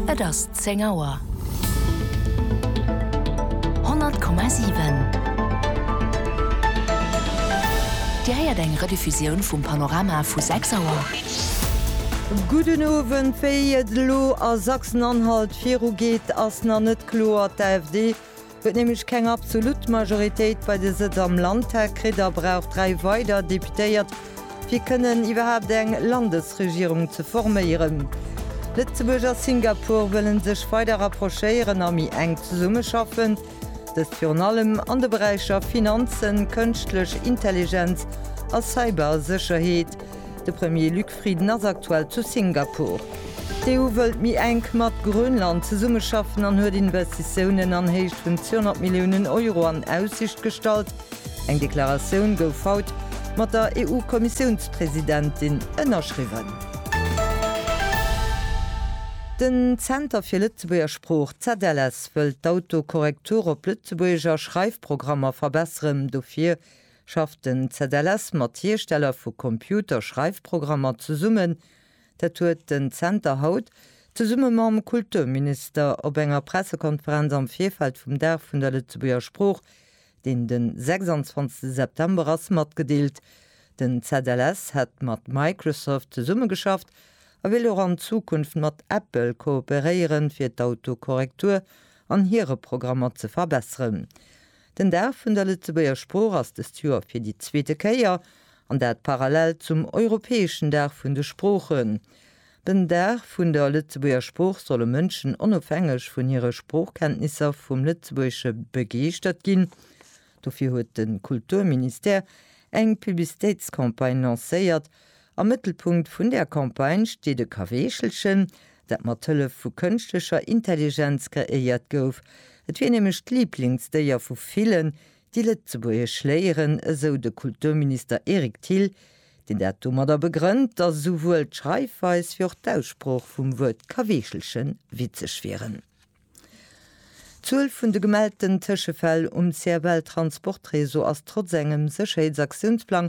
Et ass zéng Auer. 100,7 Dir héiert eng Rediffusioun vum Panorama vu 6 Auer. Gudden Owend. Wéi et elo a Sachsen-Anhalt virugeet, ass nach net kloer. D'AfD Huet nämlech keng absolut Majoritéit bei de Sëtz am Landtag kritt a brauch dräi weider Deputéiert, fir kënnen iwwerhaapt eng Landesregierung ze forméieren. Lëtzebuerg a Singapur wëlle sech weider rapprochéieren a méi enk zesummeschaffen, dëst virun allem an de Beräicher Finanzen, Kënschtlech Intelligenz a Cybersécherheet. De Premier Luc. Friden ass aktuell zu Singapur. D'EU wëllt méi enk mat Grönland zesummeschaffen an huet Investitiounen an Héicht vun 200 Milliounen Euro an Aussicht gestallt. Eng Deklaratioun gouf haut mat der EU-Kommissiounspresidentin ënnerschriwwen. Den Zenter fir Lëtzebuerger Sprooch, ZLS, wëllt d'Autokorrektur op Lëtzebuergeger Schreifprogrammer verbesseren. Dofir schafft den ZLS mat Hiersteller vu Computer-Schreifprogrammer zesummen. Dat huet den Zenter haut, zesumme mam Kulturminister, op enger Pressekonferenz am Virfeld vum Dag vun der Lëtzebuerger Sprooch, deen de 26 September ass, matgedeelt. Den ZLS hätt mat Microsoft zesummegeschafft a wéilt och an Zukunft mat Apple kooperéieren, fir d'Autokorrektur an hire Programmer ze verbesseren. Den Dag vun der Lëtzebuerger Sprooch ass dëst Joer fir déi zweete Kéier, an dat parallel zum europäeschen Dag vun de Sproochen. Den Dag vun der Lëtzebuerger Sprooch solle Mënschen onofhängeg vun hire Sproochkenntnisser vum Lëtzebuergesche begeeschtert ginn. Dofir huet de Kulturministère eng Publicitéitscampagne lancéiert, Am Mëttelpunkt vun der Campagne steet e Kaweechelchen, dat mat Hëllef vu kënschtlecher Intelligenz kreéiert gouf. Et wier nämlech d'Liblingsdéier vu villen, déi Lëtzebuergesch léieren, esou de Kulturminister Eric Thill, deen dat domadder begrënnt, datt esouwuel d'Schreifweis wéi och d'Aussprooch vum Wuert Kaweechelchen witzeg wieren. D'Zuel vun de gemellten Tëschefäll um CFL-Transportreseau ass trotz engem Sécherheetsaktiounsplang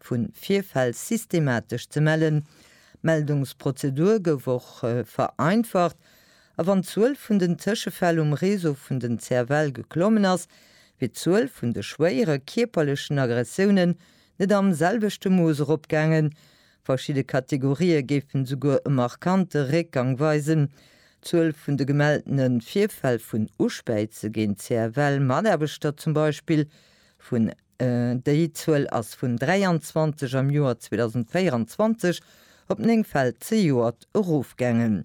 vun Virfäll systematesch ze mellen. D'Meldungsprozedur gouf och vereinfacht a wann d'Zuel vun den Tëschefäll um Réseau vun den CFL geklommen ass, wier d'Zuel vun de schwéiere kierperlechen Aggressiounen net am selwechte Mooss eropgaangen. Verschidde Kategorië géifen souguer e markante Réckgang weisen. D'Zuel vun de gemelltene Virfäll vun Uspäize géint CFL-Mataarbechter zum Beispill vun Déi Zuel ass vun 23 am Joer 2024 op 9 Fäll zejoert erofgaangen.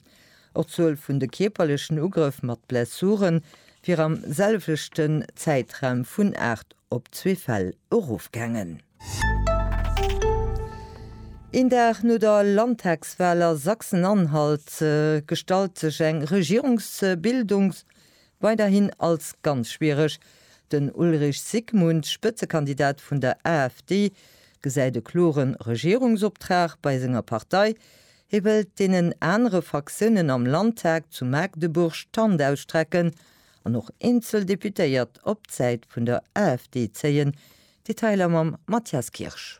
Och d'Zuel vun de kierperlechen Ugrëff mat Blessure wier am selwechten Zäitraum vun 8 op zwee Fäll erofgaangen. Een Dag no der Landtagswal a Sachsen-Anhalt gestallt sech eng Regierungsbildungs-, Weiderhin als ganz schwiereg. Den Ulrich Zygmunt, Spëtzekandidat vun der AfD, gesäit e klore Regierungsoptrag bei senger Partei. Hie wëllt deenen anere Fraktiounen am Landtag zu Magdeburg d'Hand ausstrecken an och eenzel Deputéiert op d'Säit vun der AfD zéien. Detailer mam Mathias Kirsch.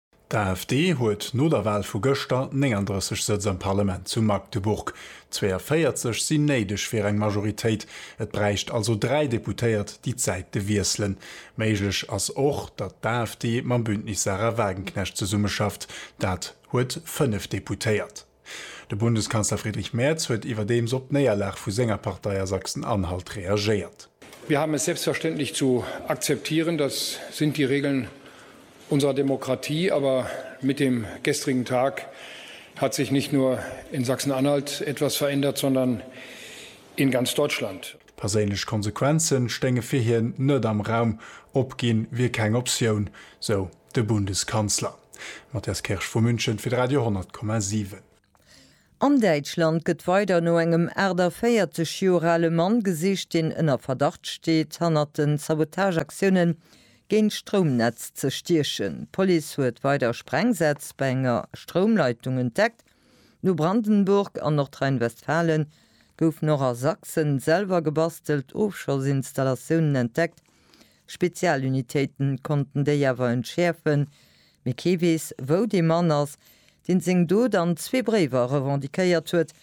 D'AfD huet no der Wahl vu gëschter 39 Sëtz am Parlament zu Magdeburg. 42 sinn néideg fir eng Majoritéit, et bräicht also 3 Deputéiert, déi d'Säite wiesselen. Méiglech ass och, datt d'AfD mam Bündnis Sahra Wagenknecht zesummeschafft, dat huet 5 Deputéiert. De Bundeskanzler Friedrich Merz huet iwwerdeems op d'Néierlag vu senger Partei a Sachsen-Anhalt reagéiert. Wir haben es selbstverständlich zu akzeptieren, das sind die Regeln unserer Demokratie, aber mit dem gestrigen Tag hat sich nicht nur in Sachsen-Anhalt etwas verändert, sondern in ganz Deutschland. Perséinlech Konsequenze stéinge fir hien net am Raum, opginn wier keng Optioun, sou De Bundeskanzler, Matthias Kirsch vu München fir de Radio 10,7. An Däitschland gëtt weider no engem 48 Joer ale Mann gesicht, deen ënner Verdacht steet, hannert den Sabotageaktioune géint d'Stroumnetz ze stiechen. D'Police huet weider Sprengsätz bei enger Stroumleitung entdeckt. No Brandenburg an Nordrhein-Westfalen goufen och a Sachsen selwer gebastelt Ofschossinstallatioune entdeckt, Spezialunitéiten konnten déi awer entschäerfen, mee kee weess, wou dee Mann ass, deen seng Dot an zwee Bréiwer revendiquéiert huet.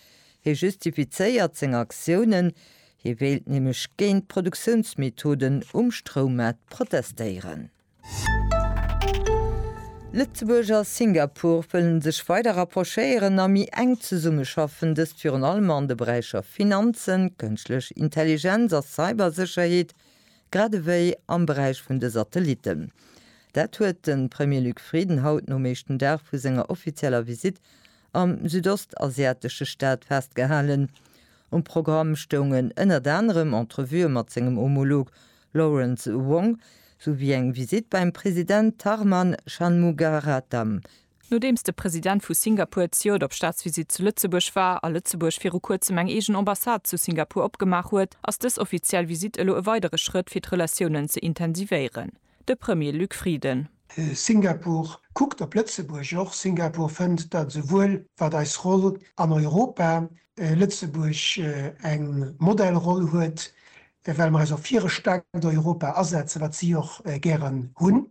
Hie justifizéiert seng Aktiounen, hie wéilt nämlech géint d'Produktiounsmethoden um Stroummaart protestéieren. Lëtzebuerg a Singapore wëllen sech weider rapprochéieren a méi enk zesummeschaffen, dëst virun allem an de Beräicher Finanzen, Kënschtlech Intelligenz a Cybersécherheet, Grad ewéi am Beräich vun de Satellitten. Dat huet de Premier Luc Frieden haut nom éischten Dag vu senger offizieller Visitt am südostasiatesche Staat festgehalen. Um Programm stoungen ënnert anerem Entrevuë mat sengem Homolog Lawrence Wong, souwéi eng Visitt beim President Tharman Shanmugaratnam, Nodeems de President vu Singapur d'Ciot op Staatsvisitt zu Lëtzebuerg war a Lëtzebuerg viru kuerzem eng eegen Ambassade zu Singapur opgemaach huet, ass dës offiziell Visitt elo e weidere Schrëtt fir d'Relatiounen ze intensivéieren. De Premier Luc Frieden. Singapur kuckt op Lëtzebuerg och. Singapur fënnt, datt esouwuel wat eis Roll an Europa, Lëtzebuerg eng Modellroll huet, well mer eis och fir e staarkt Europa asetzen, wat si och gären hunn,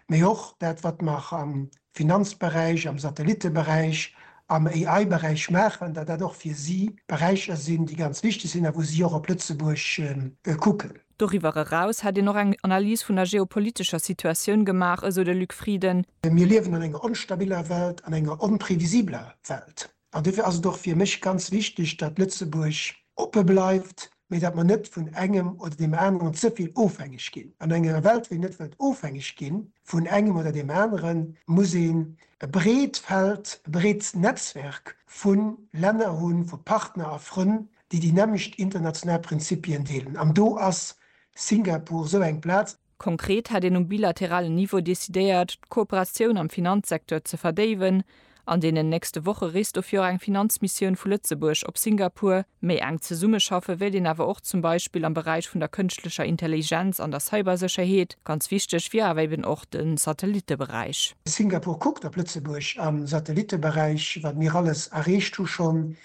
mee och dat, wat mer am Finanzberäich, am Satellitteberäich, am AI-Beräich maachen, datt dat och fir si Beräicher sinn, déi ganz wichteg sinn a wou si och op Lëtzebuerg kucken. Doriwwer eraus hätt een och eng Analys vun der geopolitescher Situatioun gemaach, esou de Luc Frieden. Mir liewen an enger onstabiller Welt, an enger onprevisibeler Welt. An dofir ass et och fir mech ganz wichteg, datt Lëtzebuerg oppe bleift, mä datt mer net vun engem oder deem aneren ze vill ofhängeg ginn. An enger Welt, wou een net wëllt ofhängeg gi vun engem oder deem aneren, muss een e breet Feld, e breet Netzwerk vu Länner hunn, vu Partner a Frënn, déi déi nämmlecht international Prinzipien deelen. An do ass Singapur esou eng Plaz. Konkret hätt een um bilateralen Niveau decidéiert, d'Kooperatioun am Finanzsecteur ze verdéiwen. An deenen nächste Woche reest dofir och eng Finanzmissioun vu Lëtzebuerg op Singapur. Méi enk zesummeschaffe wéilt een awer och zum Beispill am Beräich vun der kënschtlecher Intelligenz an der Cybersécherheet. Ganz wichteg wier awer eben och de Satellitteberäich. Singapur kuckt op Lëtzebuerg am Satellitteberäich, wat mir alles erreecht hu schonn.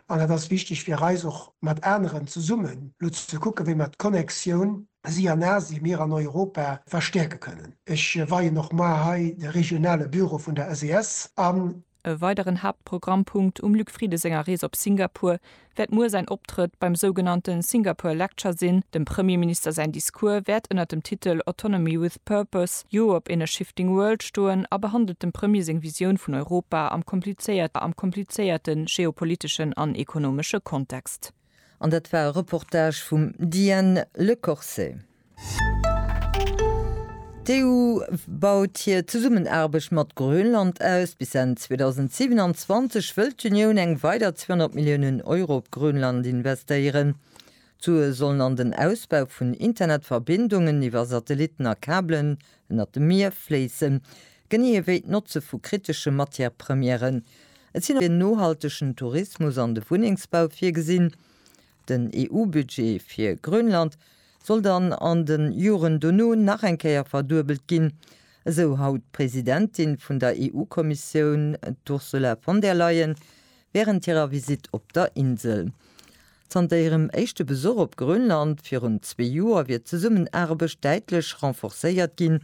An et ass wichteg fir eis och mat aneren zesummen elo ze kucken, wéi mer d'Connexioun, si an Asien, mir an Europa verstäerke kënnen. Ech weien och mar hei de regionale Büro vun der SES an. E weideren Haaptprogrammpunkt um Luc Frieden senger Rees op Singapur wäert muer säin Optrëtt beim sougenannte Singapore Lecture sinn. Dem Premierminister säin Discours wäert ënnert dem Titel Autonomy with Purpose, Europe in a Shifting World stoen a behandelt dem Premier seng Visioun vun Europa am komplizéierte geopoliteschen an ekonomesche Kontext. An dat war e Reportage vum Diane Lecorset. D'EU baut hir Zesummenaarbecht mat Grönland aus. Bis Enn 2027 wëll d'Unioun eng weider 200 Milliounen Euro op Grönland investéieren. D'Sue sollen an den Ausbau vun Internetverbindungen iwwer Satellitten a Kabelen ënnert dem Mier fléissen. Genee ewéi d'Notze vu kritesche Matière-Premièren. Et sinn och fir nohaltegen Tourismus an de Wunnengsbau virgesinn. Den EU-Budget fir Grönland soll dann an de Joren dono nach eng Kéier verduebelt ginn, esou haut d'Presidentin vun der EU-Kommissioun, d'Ursula von der Leyen, wärend hirer Visitt op der Insel. Zanter hirem éischte Besuch op Grönland virun zwee Joer wier d'Zesummenaarbecht däitlech renforcéiert ginn,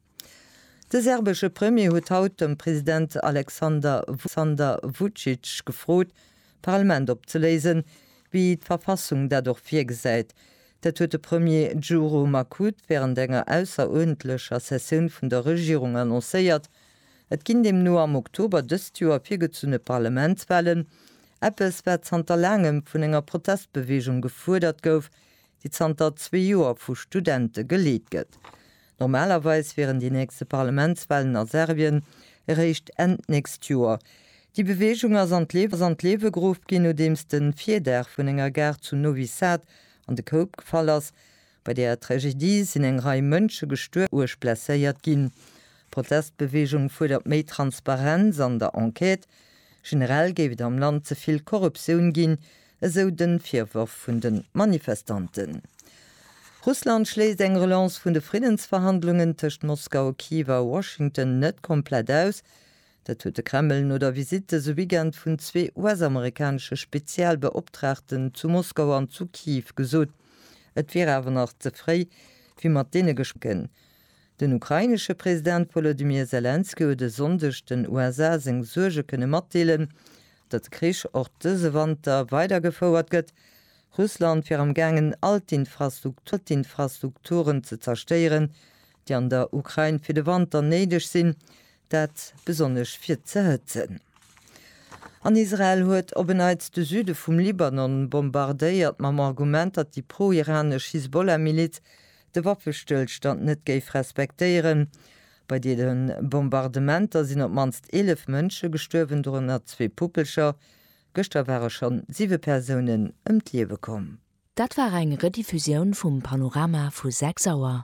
De serbesche Premier huet haut de President Alexander Vucic gefrot, d'Parlament opzeléisen, wéi d'Verfassung dat och virgesäit. Dat huet de Premier Djuro Makut wärend enger ausseruerdentlecher Sessioun vun der Regierung annoncéiert. Et ginn deemno am Oktober dëst Joer virgezunne Parlamentswalen, eppes wat zanter laangem vun enger Protestbeweegung gefuerdert gouf, déi zanter zwee Joer vu Studente geleet gëtt. Normalerweis wieren déi nächste Parlamentswahlen a Serbien eréischt Enn d'nächst Joer. Déi Beweegung ass an d'Liewe geruff ginn, nodeems de Virdaach vun enger Gare zu Novi Sad an de Koup gefall ass. Bei där Tragedie sinn eng Rei Mënsche gestuerwen oder uerg blesséiert ginn. D'Protestbeweegung fuerdert méi Transparenz an der Enquête. Generell géif et am Land ze vill Korruptioun ginn, esou de Virworf vun de Manifestanten. Russland schléisst eng Relance vun de Friddensverhandlungen tëscht Moskau, Kiew a Washington net komplett aus. Dat huet de Kreml no der Visitt dëse Weekend vun zwee US-amerikanesche Spezialbeoptraagten zu Moskau an zu Kiew gesot. Et wier awer nach ze fréi, fir mat deene Gespr. Den ukrainesche President Wolodymyr Selenskyj huet e Sonndeg den USA seng Suerge kënne matdeelen, Datt de Krich och dëse Wanter weidergefouert gëtt, Russland wier am gaangen all d'Infrastrukturen ze zerstéieren, déi an der Ukrain fir de Wanter néideg sinn, dat besonnesch fir z'erhëtzen. An Israel huet op en Neits de Süde vum Libanon bombardéiert, mam Argument, datt déi pro-iranesch Hisbollah-Miliz de Waffestëllstand net géif respektéieren, Bei deene Bombardementer sinn op d'mannst 11 Mënsche gestuerwen, dorënner zwee Puppelcher. Gëschter ware schonn siwe Persounen ëm d'Liewe komm. Dat war eng Rediffusioun vum Panorama vu 6 Auer.